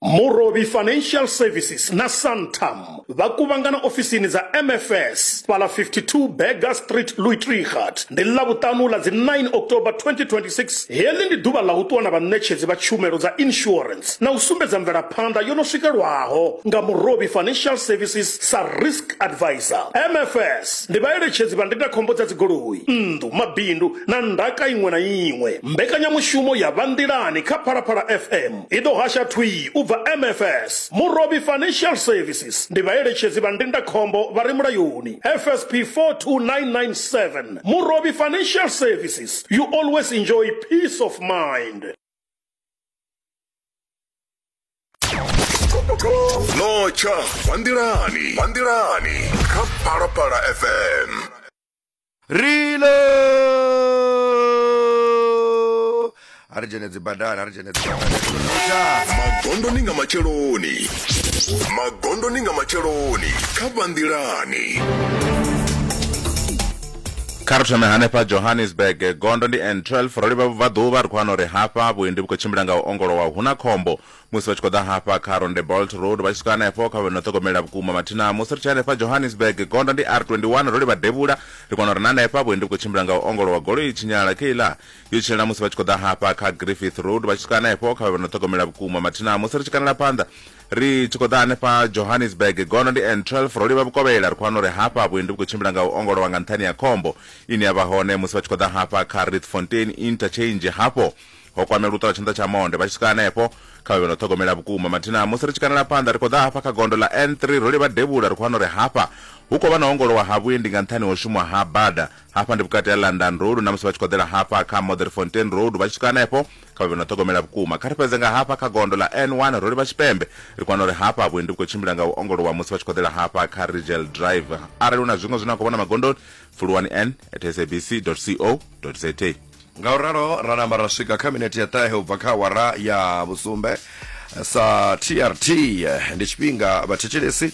Murovhi Financial Services na Santam vha kuvhangana ofisini dza MFS fhaḽa 52 Burger Street, Luitregat, ndi Ḽavhuṱanu ḽa dzi 9 October 2026. Heḽi ndi ḓuvha ḽa u ṱuwa na vhaṋetshedzi vha tshumelo dza insurance na u sumbedza mvelaphanḓa yo no swikelwaho nga Murovhi Financial Services sa Risk Advisor. MFS. Ndi vhaeletshedzi vha ndindakhombo dza dzigoloi, nnḓu, mabindu na ndaka iṅwe na iṅwe. Mbekanyamushumo ya Vha Nḓilani kha Phalaphala FM i ḓo hasha thwii u bva MFS. Murovhi Financial Services ndi vhaeletshedzi vha ndindakhombo vha re mulayoni, FSP 42997. Murovhi Financial Services, you always enjoy peace of mind. notsha kwanḓilani kwanḓilani kha phalaphala fm rile a ri dzhene dzibadani a ri dzhene dzibadani magondoni nga matsheloni magondoni nga matsheloni kha vhanḓilani kha ri thome hanefha johannesburg gondo ndi n12 ro livha vhubvaḓuvha ri khou wana uri hafha vhuendi vhu khou tshimbila nga u ongolowa hu na khombo musi vha tshi khou ḓa hafha kha ronde bolt road vha tshi swika hanefho kha vhe no ṱhogomelela vhukuma mathina musi ri tshi hanefha johannesburg gondo ndi r21 ro livha devhula ri kona uri na hanefha vhuendi vhu khou tshimbila nga u ongolowa goloi tshinyala keiḽa yo tshinyala musi vha tshi khou ḓa hafha kha griffith road vha tshi swika hanefho kha vhe no ṱhogomelela vhukuma mathina musi ri tshi kanela phanḓa Ri tshi khou ḓa hanefha Johannesburg, gono ndi N12, ro livha Vhukovhela, ri khou wana uri hafha vhuendi vhu khou tshimbila nga u ongolowa nga nṱhani ha khombo ine ya vha hone musi vha tshi khou ḓa hafha kha Rietfontein Interchange. Hafho ho kwamelwa u ṱola tshanḓa tsha monde vha tshi swika hanefho. Kha vha vhe na u ṱhogomela vhukuma. Mathina musi ri tshi kanela phanḓa, ri khou ḓa hafha kha gondo ḽa N3, ro livha Devhula, ri khou wana uri hafha hu khou vha na u ongolowa ha vhuendi nga nṱhani ha u shumwa ha bada. Hafha ndi vhukati ha London Road na musi vha tshi khou ḓela hafha kha Modderfontein Road vha tshi swika hanefho kha vhe vho no ṱhogomela vhukuma kha ri fhedze nga hafha kha gondo ḽa n1 ro livha tshipembe ri kwana uri hafha vhuendi vhu khou tshimbila nga u ongolowa musi vha tshi khou ḓela hafha kha rigel drive arali hu na zwiṅwe zwine a khou vhona magondoni fuluwani n at sabc co za nga u ralo ra namba ra swika kha minete ya ṱahe u bva kha awara ya vhusumbe sa trt ndi tshifhinga vhathetshelesi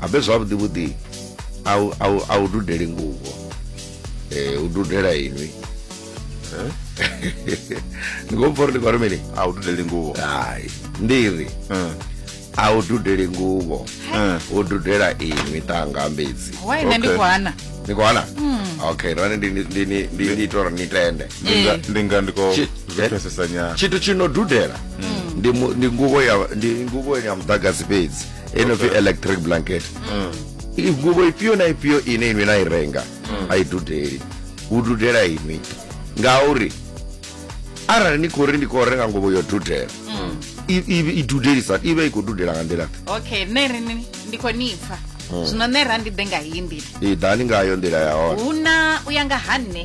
abe zwavhuḓi vhuḓi a u dudeli nguvho eh, u dudela inwi eh? ni khou mpfa uri ndi khou ri mini a u dudeli nguvho hai ndi ri eh. a u dudeli nguvho u dudela inwi ṱanga mbedzi ni khou hana hmm. okay rani ndi ita uri ni tende ndi nga ndi khou pfesesa nyana tshithu tshi no dudela hmm. ndi nguvho ya muḓagasi fhedzi e no pfi electric blanket i gubo ifhio na ifhio ine inwi na i renga a i dudeli hu dudela inwi ngauri arali ni khou ri ndi khou renga nguvho yo dudela i- i- i dudelisa i vha i khou dudela nga nḓila okay nṋe ri ni- ndi khou ni pfa zwino nṋe ra ndi ḓe nga heyi nḓila i ḓani ngayo nḓila ya hone hu na u ya nga ha nṋe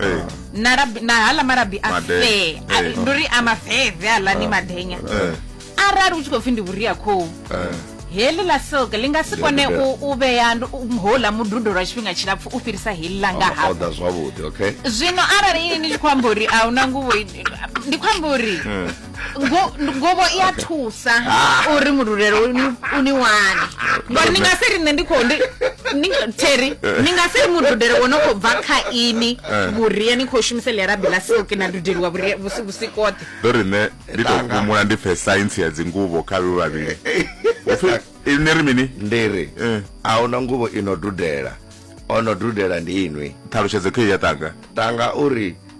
eh. na labi na hala malabi a Made- fee eh. A- ndi uri a mafeve hala ni madenya Eh. arali u tshi khou pfi ndi vhuria khou Eh. heḽi ḽa silk ḽi nga si Ndi kone vhuria. u u vhea ndu- u- houḽa mududo lwa tshifhinga tshilapfu u fhirisa heḽi ḽa nga Ono hafha oda zwavhuḓi okay zwino arali ini ni tshi khou amba uri a huna nguvho i- ndi khou amba uri Eh. ngobo i a thusa ah. uri mululelo u ni wane ngori ni nga si ri nṋe ndi khou teri eh. ni nga si ri mududele wo no khou bva kha ini eh. vhuria ni khou shumisa ḽiarabi ḽa silki na dudeliwa vhusikote ndo ri nṋe ndi tou humula ndi pfe saintsi ya dzinguvho kha vhe vhavhili upfi ini ri mini ndi ri eh. a hu na nguvho i no dudela o no dudela ndi inwi ṱhalutshedzo khe ya tanga tanga uri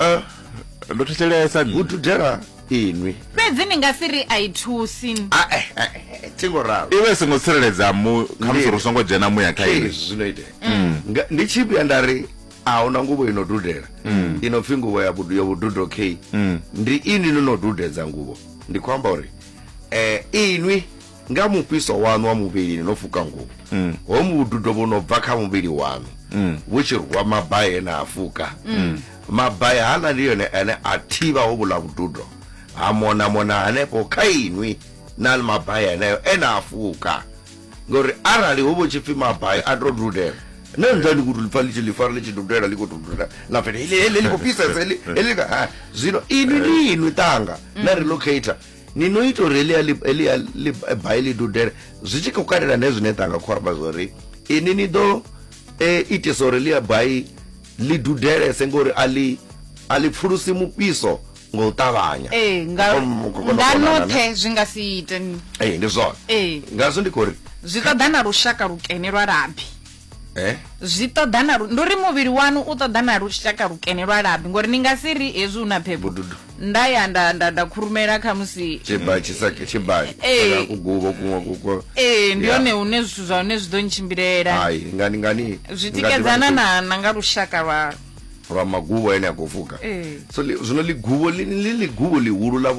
Eh, ndo thetshelesa nṋe. hu dudela inwi fhedzi ni nga si ri a i thusi Ah, eh, eh, eh, thingo ralo iwe songo tsireledza mu khamusi ri songo dzhena muya kha iwe Yes, zwino itea Nga- ndi tshi vhuya nda ri ahuna nguvho ino dudela ino pfi nguvho ya vhudu- ya vhududo k ndi ini no no dudedza nguvho ndi khou amba uri eh inwi Nga mufhiso waṋu wa muvhilini no fuka nguvho, ho vhududo vhu no bva kha muvhili waṋu vhu tshi rwa mabai e na a fuka. Mabai haaḽa ndi one ane a thivha hovhuḽa vhududo ha monamona hanefho kha inwi na mabai eneo e na a fuka. Ngauri arali ho vha hu tshi pfi mabai a tou dudela, na nda ni khou tou ḽi pfa ḽi tshi ḽi fara ḽi tshi dudela ḽi khou tou dudela na pfi heḽi heḽi ḽi khou fhisesa heḽi heḽi. Zwino inwi ndi inwi ṱanga na relocator. ni no ita uri elia elia bai ḽi dudele zwi tshi khou katela ne zwine ṱanga khou amba zwori ini ni ḓo e, itisa uri ḽia bai ḽi dudelese ngori a ḽi a ḽi pfulusi mufhiso nga u ṱavhanya ee nga noṱhe zwi nga si ite ee ndi zwone ee ngazwo ndi khou ri zwi ṱoḓa na lushaka lukene lwa labi eh? zwi ṱoḓa na ndi uri muvhili wanu u ṱoḓa na lushaka lukene lwa labi ngori ni nga si ri hezwi u na phepho nda ya nda nda nda khurumela kha musi tshibali eh. kugubo kuṅwe kuko ee eh, ndi hone hune zwithu zwa hone zwi ḓo ntshimbilela ngani ngani zwi tikedzana na na nga lushaka lwa lwa magubo ene a khou fuka so zwino ligubo li ligubo lihulu ḽa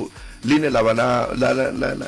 line ḽa vha na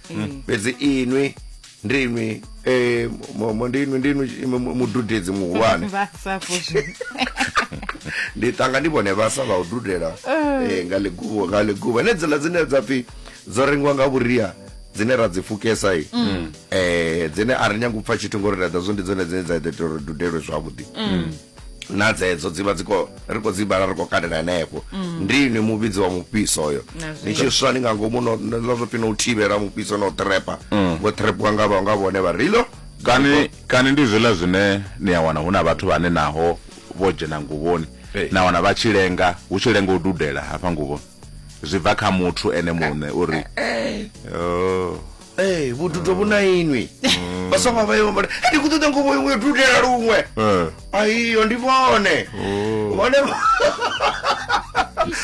fhedzi inwi ndinwi eh, mo- mo- ndinwi ndinwi mu- mu- mududedzi muhulwane vhasafo ndi tanga ndi vhone vhasa vha u dudela eh, nga ḽiguvho nga ḽiguvho ene dzila dzine dza pfhi dzo rengiwa nga vhuria dzine ra dzi fukesa i eh, dzine a ri nyanga u pfa tshithu ngori ra ḓa zwo ndi dzone dzine dza ita uri dudelwe zwavhuḓi na dzedzo dzivha dzi khou ri khou dzi vhala ri khou katela henefho mm. ndi ini muvhidzi wa mufhiso oyo ni tshi swa ni nga ngomu no zwo pfi no u thivhela mufhiso na u trepa mm. vho trepiwa nga nga vhone vha rilo kani kani ndi zwiḽa zwine ni a wana hu na vhathu vhane naho vho dzhena nguvhoni na wana vha tshi lenga hu tshi lenga u dudela hafha nguvhoni zwi bva kha muthu ene muṋe uri eh, eh. Oh. ee vhududo vhu na inwi vhasonga vha yo vha ndi khou ṱoḓa ngovo iwe dudela luṅwe Eh. aiyo ndi vhone Oh. vhone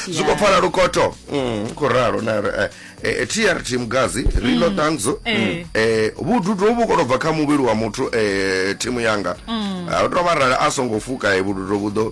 zwi khou pfala lukoto Mm, khou ralo na ri, eh, eh, trt mugazi rino ṱangzo Eh. eh, vhududo vhu kono bva kha muvhili wa muthu eh, thimu yanga a tou vha rali a songo fuka eh, vhududo vhu ḓo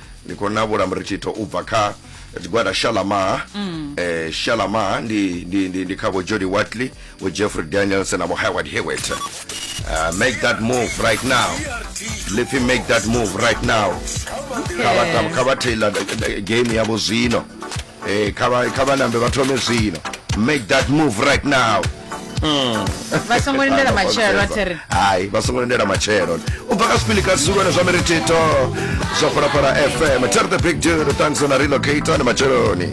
ndi khou na vhula muritshitho u bva kha tshigwada shalamar mm. eh, shalamar ndi, ndi, ndi, ndi kha vho jody watley vho jeffrey danielson na vho howard hewet uh, eh, make that move right now lipfi make that move right now kha vha taylor eh, game yavho zwino hey, eh, kha vha nambe vha thome zwino make that move right now hmm. vha songo lindela matshelo athiri hayi vha songo lindela matshelo u bva ka sipili ka zulu na zwa miritito zwa phalaphala fm ter the big deal thanks on a relocator ni matsheloni